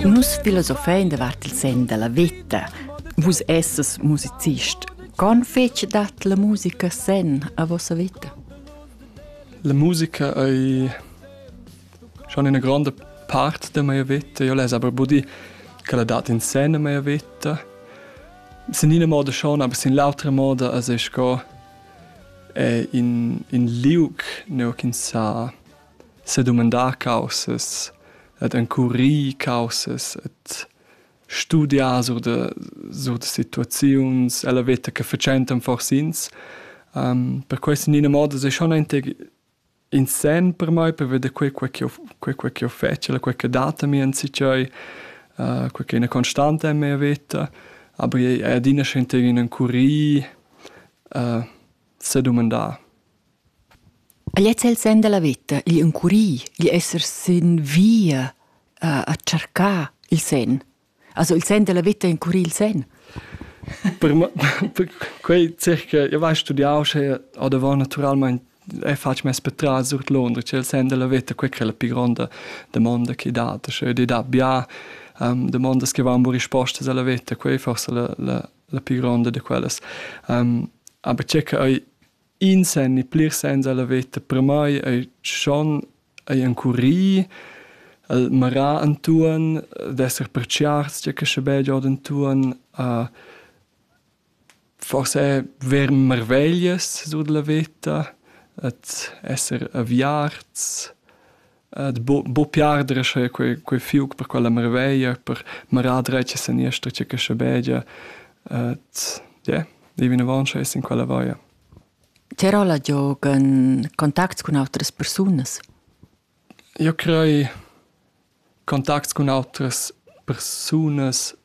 Nus filosofein davart il sen dalla veta. Vus esses musicist. Con fetg dat la musica sen a vossa veta? La musica ei schon una grande parte de mia vita. Io les aber budi che la dat in sen a mia vita. Sin ina moda schon, aber sin l'autra moda as es co in in liug neu che sa sedumandar caussas ed encurir caussas ed studiar sur da sur da situaziuns ella veta che fatschentan fors'ins. Um, per questo in ina moda è schon anche in sen per me per vedere quel quel che quel quel che ho fatto, quel che data mi in sichoi, uh, quel che è una costante in mia vita, aber è adina schentere in encurir uh, se domandar. E lez el sen dalla veta, igl encurir, igl esser sin via a, a tschercar il sen. Also il sen dalla veta encurir il sen. per, per quei circa, io vai studiau sche o davor naturalmente e faccio mes per tras sur Londra, c'è il sen della vita, quella che è la più grande domanda che dà, cioè di da bia um, domande che vanno risposte alla vita, quella forse la, la, la più grande di quelle. Um, aber c'è che In sen e plirs sens a la veta per mai ei schon ei encurì, el mara entuorn, d'esser pertgiarts tgei che sche beig ord entuorn, uh, forse ver marveglias sur dalla veta, et esser aviarts, Ed buc pli arder sche quei quei fiug per quella marveglia, per marar dretg e seniester tge che schabegia. Ed ie, dei vinavon sche es in quella vaia. Ti rolla giog en contacts cun autras persunas? Io crei contacts cun autras persunas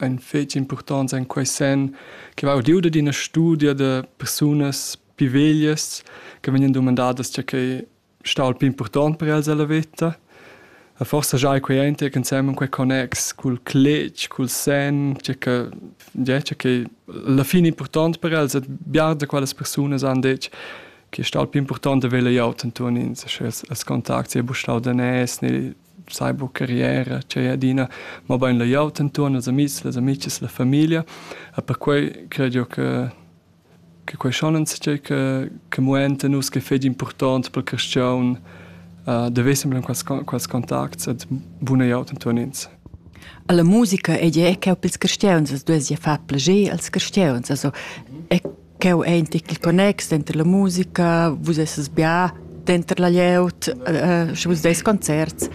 ein fetg impurtonts en quei senn che va udiu dad ina studia da persunas pi veglias che vegnan dumandadas tgei ch'ei stau il pli impurtont per els ella veta. E forsa giai ei quei enter ensemen quei connex cul cletg, cul senn, tgei che ja, tgei ch'ei alla fine impurtont per els e bia da quellas persunas han detg che ei stau il pli impurtont da vegl ei aut entuorn ins, sche els, els contacts ei bu stau daners ne sai buca rier ch'ei ei adina, mobein leu gl'auter entuorn als amis, las amichas, la famiglia. E perquei cred jeu che che quei schon enzatgei che che muenta nus ch'ei fetg impurtont per carstgaun da veser empau quels quels contacts ed buna glieud entuorn ins. Alla musica ei ei cheu pils carstgauns, as duesi far plager als carstgauns, also e Cheu ei in ticket connex denter la musica, vus esses bia denter la glieud, eh, sche vus deis concerts.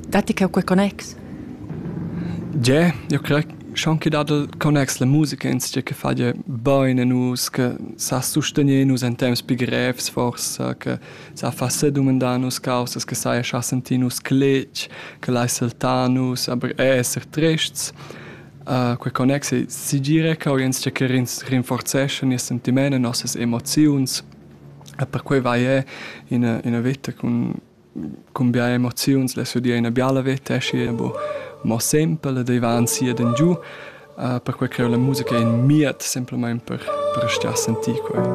Datti cheu quei connex? Ie, io crei schon che dat il connex la musica ins che fa je bene nus che sa sustenier nus in temps pi grevs forse che sa fa se domandar nus causas che sa scha sentir nus cletg che lai saltar nus aber esser trists Uh, quei connex ei segire che ins tscheccherins rinforzescha nies sentiment e nossas emoziuns e perquei vai è ina, ina vita cun, cun bia emoziuns le sudia ina biala vita esci e bo mo semple dei va ansia den giu uh, perquei che la musica è in miet semplamain per, per stia sentì quei